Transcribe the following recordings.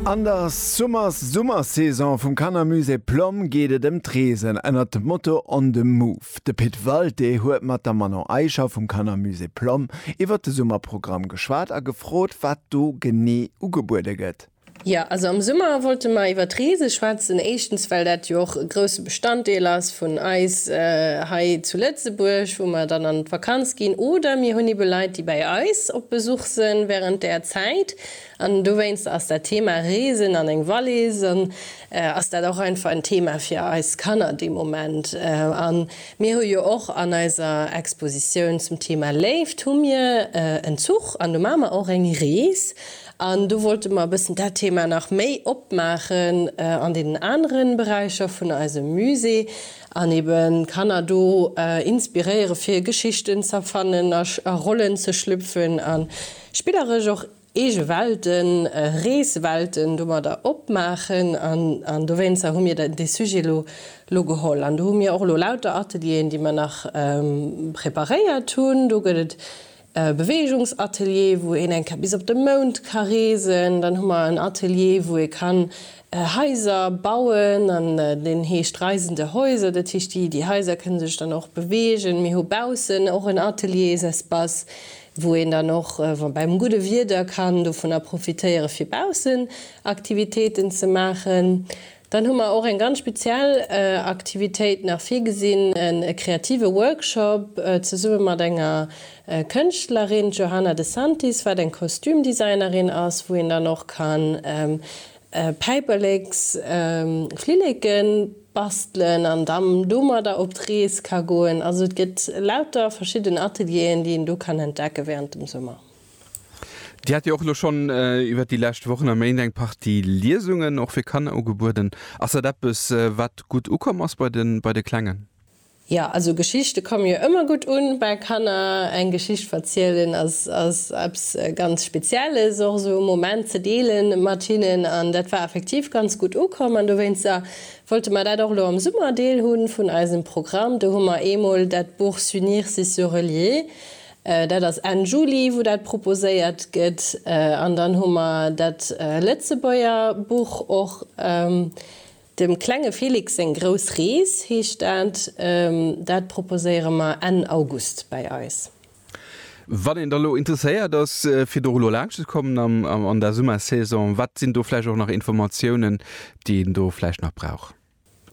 An der Summers-Summersaison vum Kannermusée Plomm geet et ëm d'Reesen ënnert dem Motto On the Move. De Pit Walté huet mat der Manon Eicher vum Kannermusée Plomm iwwer de Summerprogramm geschwat a gefrot, wat do genee ugebuede gëtt. Jo, also am Summer wollte mer iwwer d'Reese schwätzen. Éischtens, well dat jo och e grousse Bestanddeel ass vun eis hei zu Lëtzebuerg, wou mer dann an d'Vakanz ginn, oder mir hunn ebe Leit, déi bei eis op Besuch, Boxen während där Zäit an dowéinst ass dat Thema Reesen an eng Wallis an ass dat och einfach en Thema fir eis Kanner dee Moment. A mir hu jo och an eiser Expositioun zum Thema Léift hu mir en Zuch an do maache mer och eng Rees an do wollte mer e bëssen dat Thema nach méi opmaachen an deenen anere Beräicher vun eisem Musée. An eben Kanner do inspiréiere fir Geschichten z'erfannen a Rollen ze schlüpfen a spilleresch och eege Welten, Reeswelten domadder opmaachen. An dowéinster hu mir dee Sujet lo geholl. An do hu mir och elo lauter Atelieren, déi mer nach preparéiert hunn. Do gëtt et e Beweegungsatelier, wou een eng Kéier bis op de Mound ka reesen, dann hu mer en Atelier, wou ee kann Haiser bauen, an deen heescht Reisende Häuser, dat heescht, déi déi Haiser kënne sech dann och beweegen. Mir hu baussen och en Ateliers-espace, wou een dann och beim gudde Wieder kann dovunner profitéieren, fir baussen Aktivitéiten ze maachen. Dann hu mer och eng ganz speziell Aktivitéit nach virgesinn, e kreative Workshop zesumme mat enger Kënschtlerin, d'Johanna de Santis, wat eng Kostümdesignerin ass, wou een dann och kann Päiperleks, Flilleke bastelen an dann domadder op d'Rees ka goen. Also et gëtt lauter verschidden Atelieren, déi een do kann entdecke während dem Summer. Dir hat jo och elo schonn iwwert déi lescht Wochen a Méint eng Partie Liesungen och fir Kanner ugebueden. Ass dat eppes, wat gutt ukomm ass bei de Klengen? Jo, also Geschichte komme jo ëmmer gutt u bei Kanner. Eng Geschicht verzielen ass eppes ganz Spezielles, och esou e Moment ze deele mat hinnen. An dat war effektiv ganz gutt ukomm. An dowéinster wollte mer dat och elo am Summer Deel hu vun eisem Programm. Do hu mer eemol dat Buch S'unir, c'est se relier Dat ass Enn Juli, wou dat proposéiert gëtt. An dann hu mer dat Lëtzebuerger Buch och, Dem klenge Felix seng grouss Rees heescht dat. Dat proposéiere mer Enn August bei eis. Wann een da lo interesséiert ass, fir do elo laanscht ze kommen an der Summersaison, wat sinn do vläicht och nach Informatiounen, déi een do vläicht nach brauch?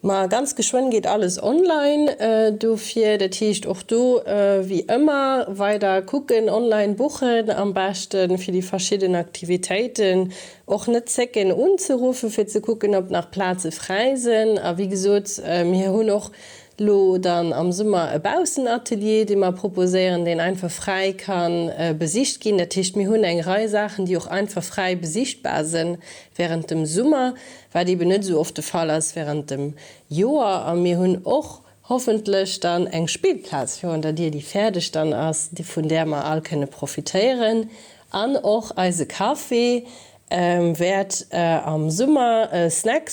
Ma ganz geschwënn geet alles online dofir. Dat heescht och do wéi ëmmer weider kucken, online buchen am beschte fir déi verschidden Aktivitéiten. Och net zécken unzeruffe fir ze kucken, ob nach Plaze fräi sinn. A wéi gesot, mir hunn och lo dann am Summer e Baussenatelier, dee mer proposéieren, deen einfach fräi ka besicht ginn. Dat heescht, mir hunn eng Rei Saachen, déi och einfach fräi besichtbar sinn wärend dem Summer. wat eben net esou oft de Fall ass während dem Joer, a mir hunn och hoffentlech dann eng Spillplaz virun der Dier, déi fäerdeg dann ass, vun där mer all kënne profitéieren an och eise Café wäert am Summer e Snack.